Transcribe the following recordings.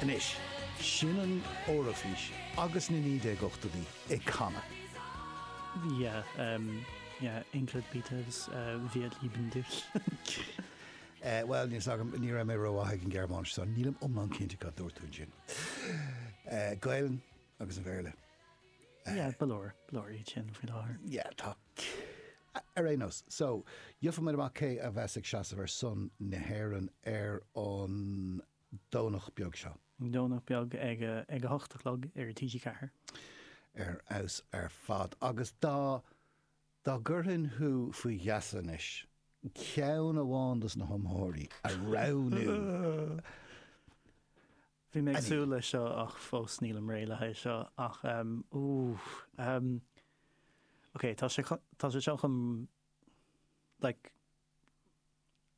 Anois, sin an Eoraifís agus na 1980idí ag canadh. Yeah, um, yeah, Ingrid Peters, Wir lieben dich. Bhuel, níl fhios agam, ní raibh mé rómhaith ag an Ghearmáinis so nílim iomlán cinnte cad a dúirt tú ansin. Gaelainn agus an Bhéarla. Yeah, ba leor, ba leor iad sin faoi láthair. Yeah, tá. Ar aon nós, so, gheoffaimid amach cé a bheas ag seasamh ar son na hÉireann ar an. Domhnach beag seo. Domhnach beag ag ag a hocht a chlog ar TG4. Ar fheabhas ar fad. Agus dá dá gcuirfinn thú faoi gheasa anois, ceann amháin dos na hiomaitheoirí a roghnú Bhí mé ag súil leis seo ach fós nílim réidh le haghaidh seo ach ehm ooh ehm ok tá sé tá sé seo chun like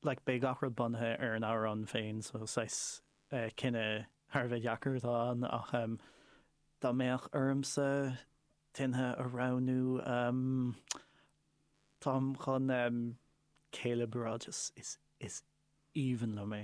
Like beidh gach rud bunaithe ar an amhrán féin so saghas cinneadh thar a bheith deacair atá ann ach dá mbeadh ormsa duine a roghnú umm táim chun Caleb a rá just is aoibhinn liom é.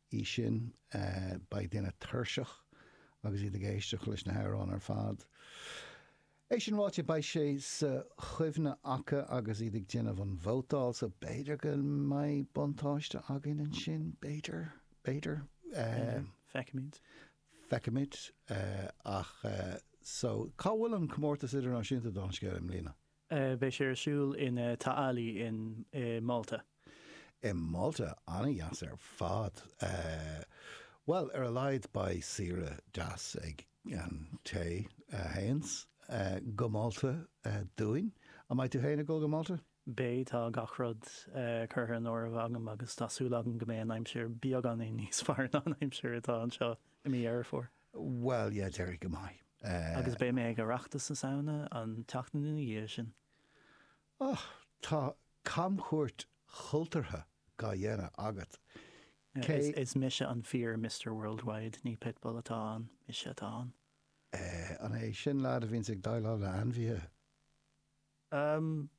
í sin. Beidh daoine tuirseach agus iad ag éisteacht leis na hamhráin ar fad. É sin ráite, beidh sé sa chuimhne acu agus iad ag déanamh an vótáil so b'fhéidir go mbeidh buntáiste againn ansin, b'fhéidir, b'fhéidir. Feicfimid. Feicfimid. Ach so cá bhfuil an Comórtas Idirnáisiúnta don scéal i mbliana? Beidh sé ar siúl in Ta' Qali in, i, Malta. I Malta? An-dheas ar fad. Bhuel, ar a laghad beidh saoire deas ag an té a théanns go Malta dúinn. An mbeidh tú féin ag dul go Malta? Beidh, tá gach rud curtha in áireamh agam agus tá súil agam go mbeidh an aimsir beagáinín níos fearr ná an aimsir atá anseo i mí Dheireadh Fómhair. Bhuel, yeah, d'éirigh go maith. Agus beidh mé ag Oireachtas na Samhna an tseachtain ina dhiaidh sin. Oh, tá camchuairt chultúrtha dá dhéanamh agat. Cé. Is mise an fíor Mister Worldwide, ní Pitbull atá ann, mise atá ann. Eh, an é sin lead a bhíonns ag déileáil le ainmhithe? Am,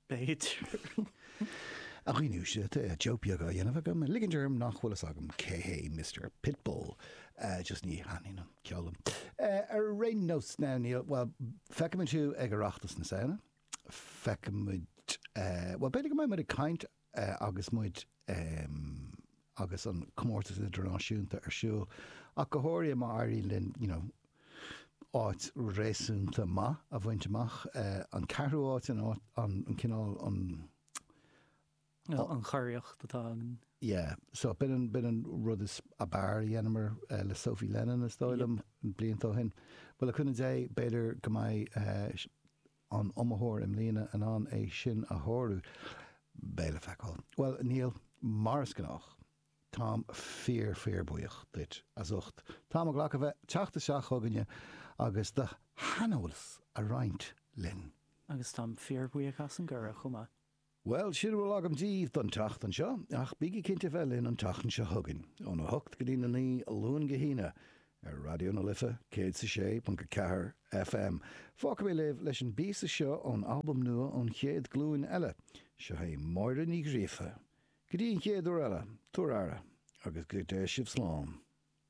b'fhéidir. A Ghiúise, tá joke beag á dhéanamh agam, ag ligint orm nach bhfuil fhios agam cé hé Mister Pitbull. Just ní thaitníonn an ceol liom. Ar aon nós, now, níl, bhuel, feicfimid thú ag Oireachtas na Samhna. Feicfimid, bhuel, b'fhéidir go mbeidh muid ag caint agus muid agus an comórtas idirnáisiúnta ar siúl ach go háirithe má éiríonn linn you know áit réasúnta maith a bhaint amach. An ceathrú áit an áit an cineál an yeah an churiarracht atá againn. Yeah so bin an bin an rud is ab fhearr a dhéanamar uh, le Sophie Lennon is dóigh liom yep. blianta ó shin. Bhuel le cúnamh Dé b'fhéidir go mbeidh uh, an iomaitheoir i mbliana in ann é sin a shárú? Beidh le feiceáil. Bhuel, Niall, mar is gnách. Táim fíor fíor buíoch duit as ucht an t-am a ghlacadh bheith teacht isteach chugainne agus do shaineolas a roinnt linn. Agus táim fíor bhuíoch as an gcuireadh chomh maith. Bhuel, sin a bhfuil agam díbh don tseachtain seo, ach bígí cinnte bheith linn an tseachtain seo chugainn, óna hocht go dtína naoi, Luan go hAoine, ar Raidió na Life 106.4 FM. Fágfaidh mé libh leis an bpíosa seo ón albam nua An Chéad Ghlúin Eile. Seo chugaibh Máire Ní Ghríofa. Go dtí an chéad uair eile, tugaigí aire, agus go dté sibh slán.